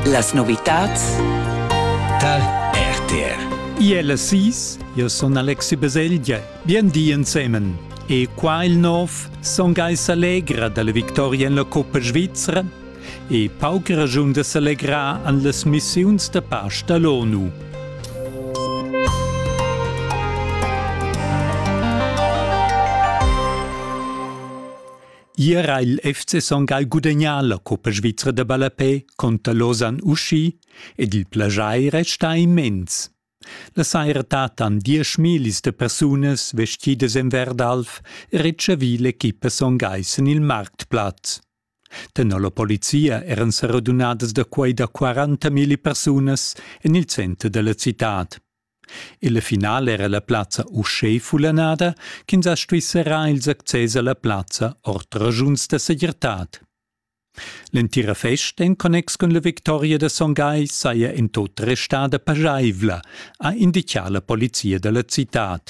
Las novitads dal RTR. Iel sis, io son Alexi Baselgia. Bien di ensemen. E qua il nov son Geis allegra dalla victoria en la Coppa Svizzera e pauc ragiun da s'allegrar an las missiuns da pace dall'ONU. Ier ha il FC Son Gagl gudegnà la coppa svizra da ballapè conter Lausanne Uschi ed il plaschair è stà immens. La saira dattan diesch millis da persunas vestidas en Verdalf retschavì l'equipa Son Gagl en il marktplatz. Tenor la polizia eran sa radunadas da quai da 40 milli persunas en il center da la citad. Illa finala era la plazza uschè fullanada ch'ins ha stuì serrar ils access a la plazza ord raschuns da segirtad. L'entira festa in connex cun la victoria da Son Gai saja in tot restada paschaivla, ha indichà la polizia da la citad.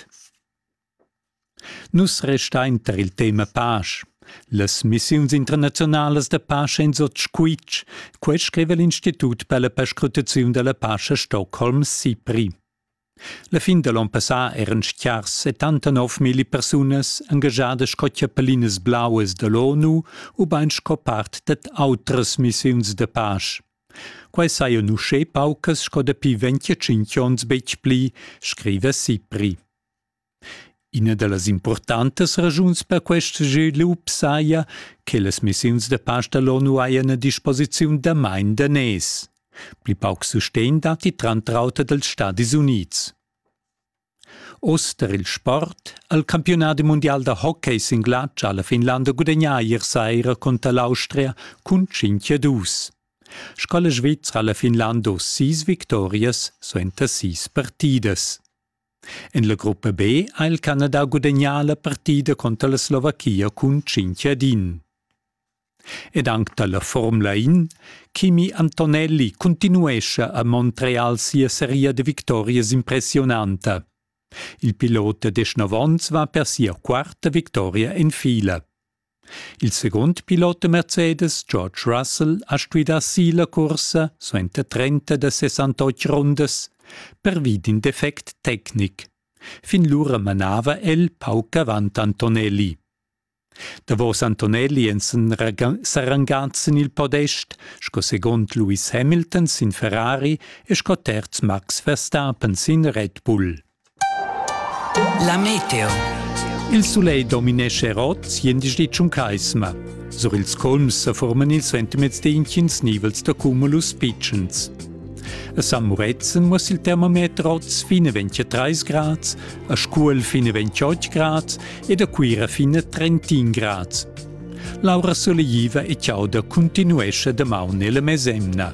Nus restain tar il tema pasch. Las missiuns internaziunalas da pasch èn sot squitsch. Quai scriva l'Institut per la perscrutaziun da la pasch a Stockholm, SIPRI. La fin da l'onn passà eran stgars 79.000 persunas engagiadas sco chiappellinas blauas da l'ONU ubain sco part dad autras missiuns da pasch. Quai sajan uschè paucas sco dapi 25 onns betg pli, scriva SIPRI. Ina da las impurtantas raschuns per quest svilup saja che las missiuns da pasch da l'ONU hajan a disposiziun damain daners. Pli pauc sustegn datti tranter auter dals Stadis Unids. Oz tar il sport ha il campiunadi mundial da hockey sin glatsch alla Finlanda gudagnà ier saira cunter l'Austria cun 5-2. Sco la Svizra ha la Finlanda sis victorias suenter sis partidas. En la gruppa B ha il Canada gudagnà la partida conter la Slovachia cun cinc ad in. Ed anc da la Formula 1, Kimi Antonelli continuescha a Montreal sia seria da victorias impressionanta. Il pilot da Deshnavons va per sia quarta victoria en fila. Il secund pilot da Mercedes, George Russell, ha stuidà silla cursa suenter 30 da 68 rundas pervi d'in defect tecnic. Fin lura manava el pauc avant Antonelli. Davos Antonelli èn s'arrangads sin il podest sco segund Lewis Hamilton sin Ferrari e sco terz Max Verstappen sin Red Bull. La meteo. Il sulegl dominesce rot siendisch di tschuncaisma. Sur ils colms sa forman ils sentiments d'intgins nivels da cumulus pitschens. A San Muretzen muss il termometer oz fine 23 grad, a Scuol fine 28 grad ed a Cuira fine 31 grad. Laura Solegiva e Ciauda continuesce damaun nella mesemna.